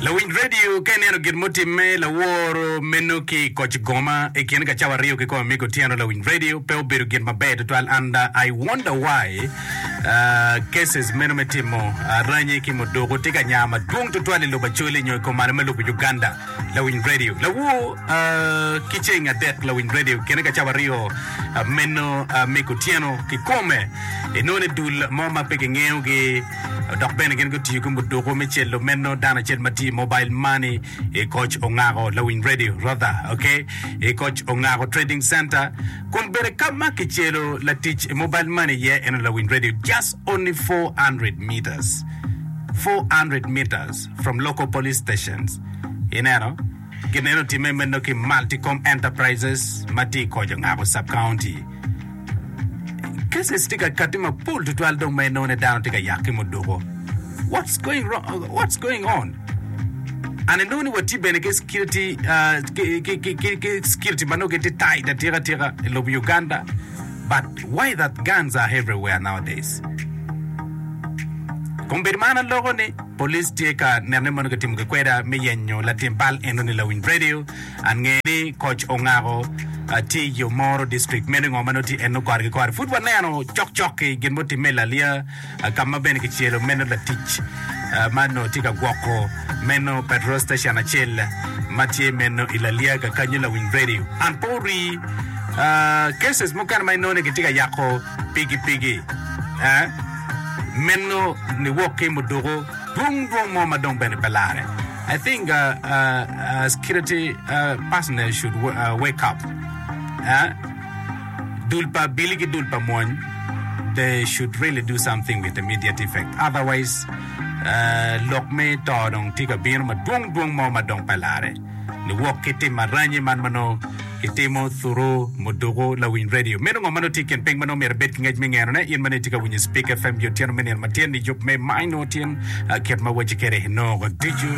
Lawiny redio ka ineno gin mutimme laworo meno ki koc goma i kin ka cawa rio ki kong amigo tyeno lawiny redio pe obedo gin maber tutwal and I wonder why uh, cases meno me timo uh, ranyi ki muduku tye ka nya madwong tutwal i lobo Acholi nyo i kom malo me lobo Uganda lawiny redio lawo uh, ki ceng adek lawiny redio kene ka cawa rio uh, meno uh, amigo tyeno ki kome inone dul mo ma pe kingeyo gi Dok bene gin gutiyo ki muduku me celo meno, dano acel ma tye i mobile money, i koc ongako lawiny radio, Rother, ok, i koc ongako trading center, kun bene ka ma kicelo latic i mobile money iye eno lawiny radio just only 400 metres, 400 metres from local police stations, ineno. Gineno timme meno ki Multicom Enterprises ma tye i koc ongabo Sub-County. Cases tye ka katti mapol tutwal dong ma inone dano tye ka yak ki muduko. What's going wrong? What's going on? An inongo ni watye bene ki security uh, ki, ki, ki, ki, ki security ma nongo gitye tight atika tika i lobo Uganda. But why that guns are everywhere nowadays? Kombeddi man aloko ni Police tye ka neno ni mono kitimo gikweda me yenyo latim bal enoni lawiny radio ange ni koc ongako tye i yo moro district meno ingo manongo tye eno kore ki kore pud waneno cok cok ki gin mo time lalia kama bene kicelo meno latic man no tye ka gwoko meno petrol station acel matye meno i lalia ga kanyo lawiny radio and po ri cases mukene ma inongo ni kitye ka yako pigi pigi eh Meno niwok ki muduku dwong dwong mo ma dong bene pe lare. I think uh, uh, uh, security uh, personnel should wa- uh, wake up. Eh? Dul pa bili ki dul pa mwony, they should really do something with immediate effect. Otherwise, uh, lok me to dong tye ka bino ma dwong dwong mo ma dong pe lare. niwok ki tim aranyi man ma nongo kitimo thuru muduku lawiny redio. Meno ngo ma nongo tye i kin piny ma nongo myero ibed ki ngec me ngenone? In ma nongo itye ka winyo Spik FM i otyeno me nino matyen-ni, yub me Maino Tyen kit ma wacci kede nongo ducu.